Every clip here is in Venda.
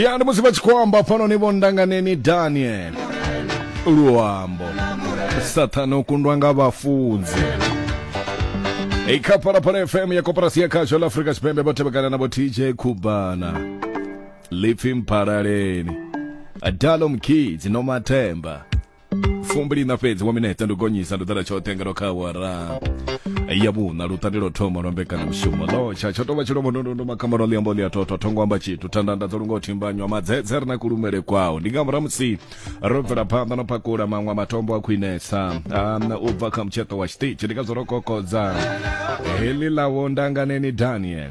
ya ndi musi vha tshi khou amba pfano ni vho ndanganeni daniel luambo sathane u kundwa nga vhafunzi i kha phalaphala fm ya koporasi ya khasho la afrika tshipembe vho tevhekana na vho tj khubana lipfi mphalaleni adalo mkidzi no mathemba fumbili na fhedzi wa minete ndi gonyisa ndo ḓala tshoṱhe ngalo kha awara ya vhuṋa luṱandi lwo thoma lwa mbekanyamushumo lotsha tsho tovha tshilombo ndondondo makhamaro ḽiambo ḽi a thotho thongo amba tshithu thandanda dzo lunga u thimbanywa madzedze ri na kulumele kwawo ndi nga murahu musi ro bvela phanḓa no pakula maṅwe matombo a khwinesa ana u bva kha mutsheṱo wa tshiṱitshi ndi nga zwo ro kokodza heḽi ḽawo ndanganeni daniel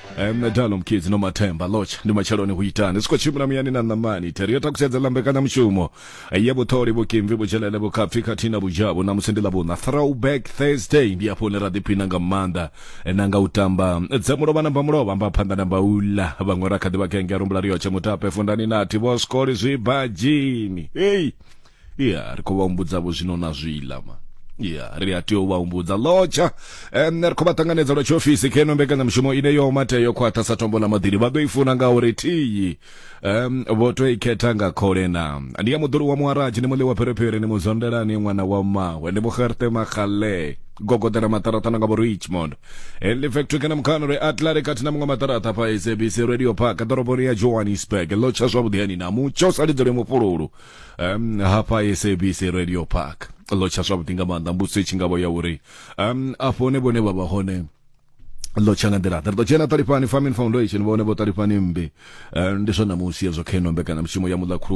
Eh, nṋe dalo mkidzi no mathemba lotsha ndi matsheloni hu itani zwi khou tshimbila muyani na ṋamani theri yo takusedzela mbekanyamushumo eh, ya vhuṱholi vhukimvi vhudzhelele vhukhapfi khathihi na vhudzhavhu ṋamusi ndi ḽavhuṋa throwback thursday ndi afho hune ra ḓiphina nga maanḓa eh, na nga u tamba eh, dza mulovha na mbamulovha mba phanḓa na mbaula vhaṅwe ra kha ḓi vha kenge a rumbula riyotshe mutape fundani nathi vho skoli zwibadzhini hei Yeah, ri khou vha humbudza vho zwino na zwiḽa ma ya ri a tea u vha humbudza lotsha um ri khou vha ṱanganedza lwa tshiofisi khe no mbekanyamushumo ine yo matea yo khwaṱha sa tombo ḽa maḓini vha ḓo i funa nga uri thiyi um vho to i khetha nga khole na ndi ya muḓulu wa muharaji ni muḽi wa pherephere ni muzondelani ṅwana wa mawe ndi muxerte maxale gogodela maṱaraṱa na nga vho richmond henley factory kana mukhano ri atlari kati na muṅwe maṱaraṱa fha sabc radio park ḓoroboni ya johannesburg lotsha zwavhuḓi hani na mutsho sa lidzole mufhululu um hafha sabc radio park ḽo tsha zwavhuḓi nga maanḓa mbudziso i tshi ngavho ya uri um afho hone vhone vha vha hone ḽo tsha nga nḓila ḓe ri ḓo dzhena ṱalifhani farming foundation vhone vho ṱalifhani mmbi um ndi zwa ṋamusi hezwo kha ino mbekanyamushumo ya muḽa khuluwa